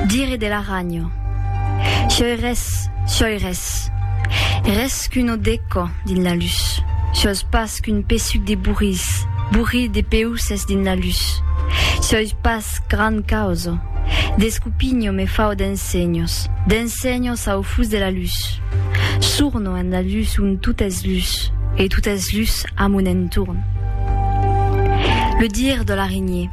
Dire de la ragno. Sioi res, sioi res. Res qu'un odeco dins la lus. Sios pas qu'un pesuc de bourris, bourri de peusses dins la lus. Sioi pas grand causo. D'escupinho me fau d'ensenhos, d'ensenhos au fus de la lus. Surno en la lus ont tot es lus e tot es lus a mon entorn. Le dire de l'araignée.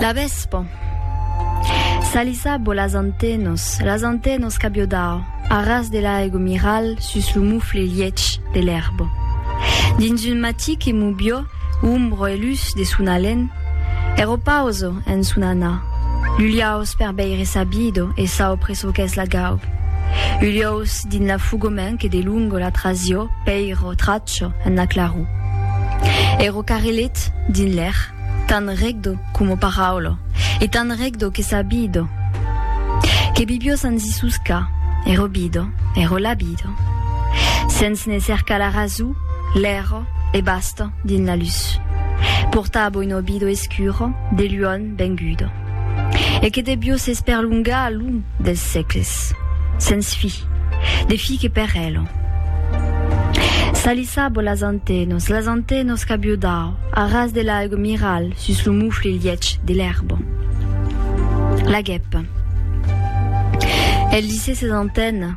La vespa. Salisabo las antenos, las antenos qu'abio dau, a ras de l'aigo miral sus lo mufle liech de l'erbo. Dins un matí que mubio umbro e lus de son alen, ero pauso en son anar. Luliaus per beire sabido e saupre çò qu'es la gau. Uliaus dins la fugomen que de lungo la trasio, peiro, tracho, marcha en la claror. E ro carrelet dins l'air, tan regdo coma paraula, e tan regdo que sa bida, que Bibio sens i susca, e ro bida, e ro la bida, sens ne cercar la raso, l'era e basta dins la lus. Porta a boino bido escuro, de luon, Benguda. E que debió s'esperlongar a lon dels sècles, sens fi, de fi que per ela. Salissabo las antenos, las antenos qu'abió dau a ras de l'aigo miral sus lo mufle liech de l'erba. La gèpa. El lisé ses antenas.